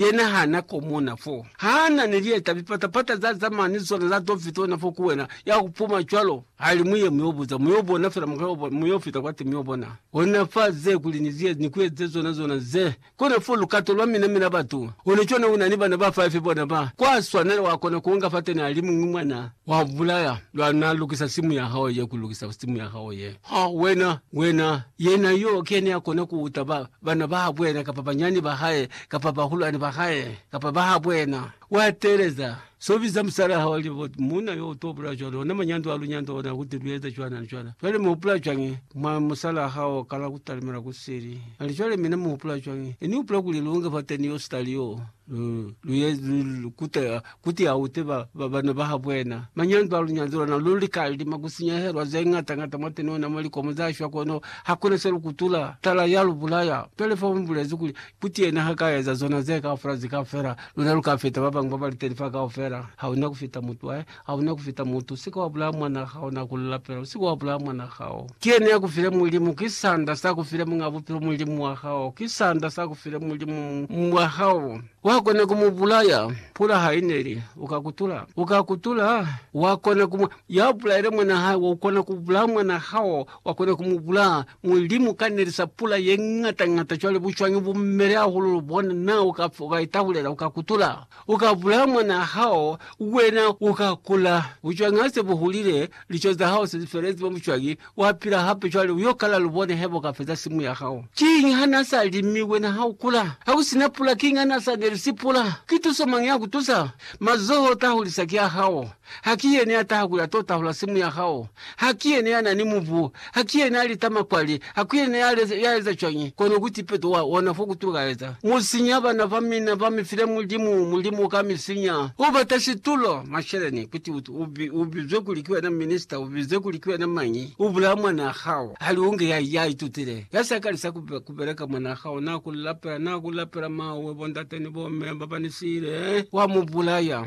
Yena ha na komona fo. Ha na ni lieta, lipata-pata za zama ni zona za to fitona fo ku wena. Ya ku puma cwalo. Ha li, Mu ye, mu yo buza. Mu yo bona fela, mu ka yo, mu yo fita kwati, mu yo bona. Ona fa ze, kuli ni ziye, ni ku eze zona, zona ze. Kona fo lukato lwa mina, mina batu. Ona cwana, una ni bana ba five bona ba kwa swanela, wa kona ku nga fateni a li muñwi mwana. Wa bulaya, lwa na lukisa simu ya hao ye, ku lukisa simu ya hao ye. Ha, wena, wena, yena yo, ki yena ya kona ku uta ba, bana ba habwena kapa banyani ba hae kapa bahulwani ba hae kapa ba habwena, wa teeleza so biza musalaa hao li bo muuna yo uto bula cwalo ona manyando a lunyando ona kuti lu eza cwana ni cwana. Cwale mu hupula cwañi mwa musalaa hao kala kutalimela kusili? Nali cwale mina mu hupula cwañi? Ini upula kuli lu nge fateni yo sitali yo? Lu kutela kuti ha ute bana ba ha bwena. Manyando a lunyazo lona lu li ka lima ku sinyehelwa ze ngata ngata mwateni ona mwa likomo za shwa, kono ha kuna se lu kutula. Tala ya lu bulaya. Pele fa mu bulezi kuli, kuti yena ha ka eza zona ze kaufela zika fela, luna lu ka feta ba bañwi ba ba li teni fa kaufela. Ha una ku feta mutu wa Hauna kufita mutu, usike wabulaya mwanaa hao, na kulula fela, usike wabulaya mwanaa hao. Ki yena yakufile Mulimu, ki sanda sakufile Muñaa Bupilo, Mulimu wa hao, ki sanda sakufile Mulimu wa hao. Wakona kumubulaya, pula haineli, uka kutula, uka kutula, wakona kumu, yabulaile mwanaa hae, ukona kubulaya mwanaa hao, wakona kumubulaya, Mulimu uka nelisa pula yeñata-ñata, cwale bucwañi bumele hahulu, lubona, na uka, uka itahulela, uka kutula, Uka bulaya mwanaa hao, wena uka kula, bucwangi hase bu hulile, lico za hao se felezi mwa bucwangi, wa pila hape cwale, uyo kala lubone heba uka feza simu ya hao. Kiñi ha na sa li mi wena ha u kula? Ha ku sina pula, kiñi ha na sa nelisi pula? Ki tuso mañi ya ku tusa? Mazoho ta hulisa ki a hao. Haki yene ya taha ku ya to tahula simu ya hao? Haki yene ya na ni mubu? Haki yene ya lita makwali? Haku yene ya eza cwañi kono ku tipeto wa ona fo ku tukaeza? Mu sinya bana ba mina ba mi file Mulimu, Mulimu ka mi sinya. U bata situlo, masheleni, kuti u bizwe kuli ki wena minista, u bizwe kuli ki wena mañi, u bulaya mwanaa hao. Hali u nge ya, ya itutile, ya sa kalisa ku beleka, mwanaa hao na ku lapela, na ku lapela, Mawe, bo ndate ni bo me ba ba ni siile, wa mu bulaya.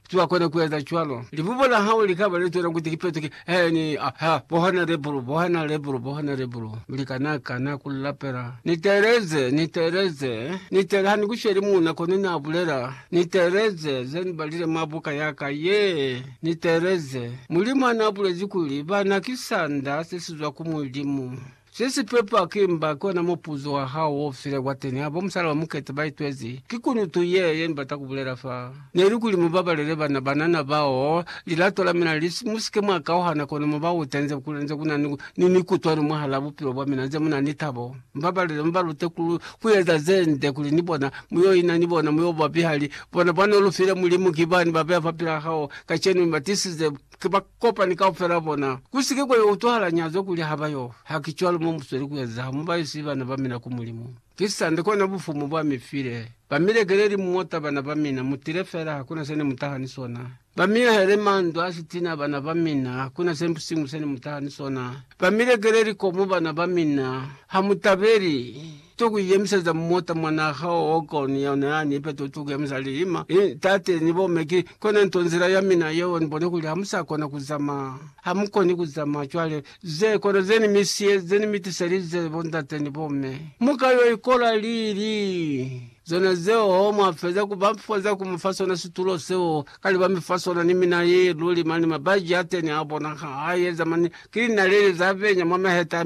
Zwa kona kueza cwalo. Libubo la hao li kaba li zwela kuti li petuke, he, ni, a, ha, bohana lebulu, bohana lebulu, bohana lebulu. Mi li kana, kana ku li lapela. Ni teeleze, ni teeleze, ni teele, ha ni ku sheli muuna, kono ni a bulela, Ni teeleze ze ni balile mwa buka ya ka ye. Ni teeleze. Mulimu ha na bulezi kuli, Bana ki sanda se si zwa ku Mulimu. Se si pepa ki mba, ki ona mupuzo wa hao wo file kwateni ha bo musala ba Mukete ba itwezi. Ki kunutu ye, ye ni bata ku bulela fa, neli kuli mu babalele bana banana bao lilato la mina li si, mu si ke mwa kauhana kono mu ba ute nze ku, nze ku na ni, ni mikutuano mwahala bupilo bwa mina, nze mu na ni tabo. Mu babalele, mu ba lute ku, ku eza ze nde kuli ni bona mu yo ina ni bona, mu yo ba bihali. Bona, bwani o lu file Mulimu ki bani ba beya fa pila hao kacenu, mi ba tisize. Ki ba kopani kaufela bona. Ku si ke kwa yo utwahala nyazo kuli ha ba yo fa. Haki cwalo mo mu sweli ku eza ha mu ba isi bana ba mina ku Mulimu. Ki sande kona Bufumu bwa mi file. Ba mi lekeleli muota bana ba mina, mu tile fela, hakuna se ne mu taha ni sona. Ba mi ahele mandu a sitina bana ba mina, hakuna se siñwi se ne mu taha ni sona. Ba mi lekeleli komu bana ba mina, ha mu tabeli. to ku iyemiseleza mota mwa naha o koni yeo ne a ni ipeto to ku yemisa lilima i tate ni bo me ki kona nto nzila ya mina yeo ni bone kuli ha mu sa kona ku zamaya ha mu koni ku zamaya cwale ze kona ze ni mi siye ze ni mi tiselize bo ndate ni bo me mu ka yo ikola lili zona zeo ho mwa feza ku ba feza ku mi fa sona situlo seo kale ba mi fa sona ni mina ye luli mani mabaji a teni a bona ha a yeza mani ki linaleli za benya mwa maheta a